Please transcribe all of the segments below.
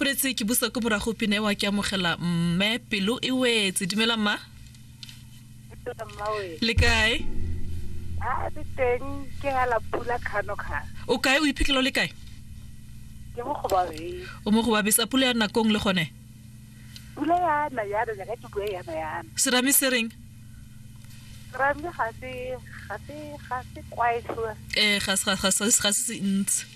boletse ke busa ko morago pina ewa ke amogela mme pelo e wetse dumela mma le kae ah, o kae o iphitlhela o le kae o mo gobabesa pula ya nakong le gone pula yana yana jaaka ke bue yana yana serame se reng serame ga se ga se ga se kwae eh ga se ga se se ntsi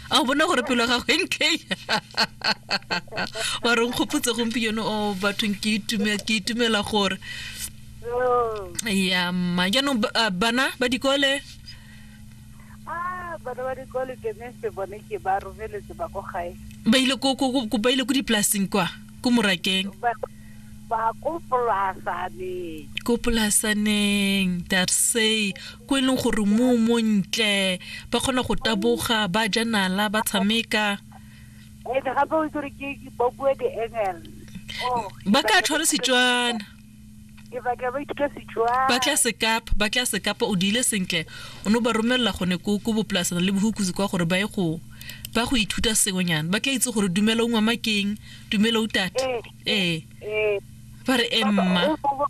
a o bona gore pelo gago e nkei wa re nkgopotse gompieno o oh, bathong ke itumela gore oh. ya mma jaanong ah, bana ba dikole ah, bana ba dikole ke ne se bone ke ba romeletse ba ko gae ba ile ko ba ile ko dipolaseng kwa ko morakeng ba ko polasaneng ko polasaneng darsey ko e leng gore mmu o montle, ba kgona go taboga, ba ja nala, ba tshameka. Ene gape o itse gore ke ba bua di-engel. Oh, Ba tla tshwara Setswana. Ke batla ba ithuta Setswana. ba tla sekapa ba tla sekapa o diile sentle o ne o ba romelela gone ko ko bopolasana le bohukusi kwa gore ba ye go ba go ithuta sengwenyana ba tla itse gore dumela o ngwamakeng dumela o tata Ee. ee Ee. ba re emma O- o-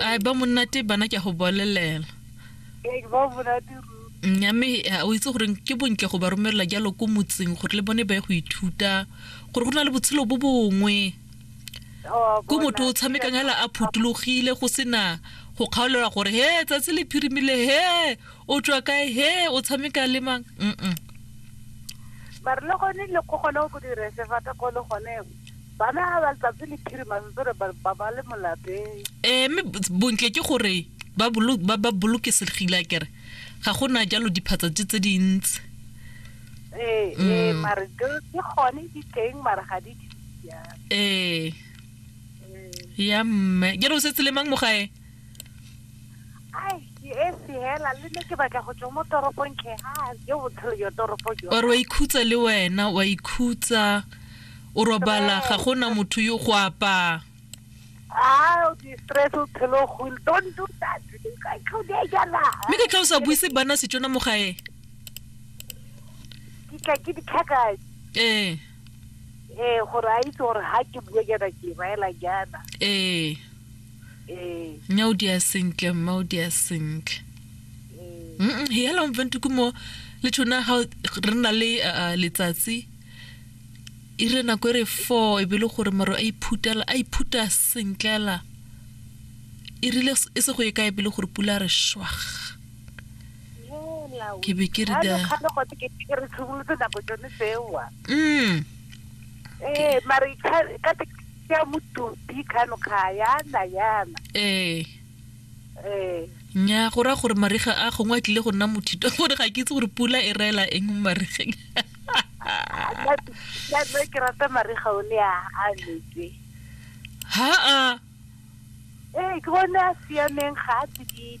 a ba monnate bana ke a go bolelela nya mme o itse gore ke bontle go ba romelela jalo ko motseng gore le bone ba ye go ithuta gore go na le botshelo bo bongwe ko motho o tshamekang hela a phutulogile go sena go kgaolelwa gore he tsatsi le phirimile he o tswa kae he o tshameka le mang mm mare le gone le go gone go dira sefata ko le gone bana ga ba tlatse liphirima ntse re ba ba le molapeng ee mme bontle ke gore ba bolokesegile a kere ga go na jalo diphatsa tse tse dintsi ee ee mm. mare ke gone di teng mare ga di ee ya mme jalo o setse le mang mo gae ore wa ikhutsa le wena wa ikhutsa o robala ga gona motho yo go apaa Ah, mme ka tla o sa buise bana setsona mo gae ee ee gore a itse gore ga ke bue jaana ke baela jaana ee Eh. Nya o dia sentle mma o dia sentle. Eh. Mm he hello mfentu kumo le tshona ha re na le uh, letsatsi e re nako e re 4 e be le gore maro a iphutela a iphuta sentlela e rile e se go e kae pele gore pula re shwag ke be ke re da mm eh mare ka ya motopi khanokga yana yana ee ee nya go raya gore mariga a gongwe a tlile go nna mothito gore ga ke itse gore pula e reela eng mo marigeng nna ke rata mariga o ne a a netse ha a ee ke bone a siameng ga a tsididi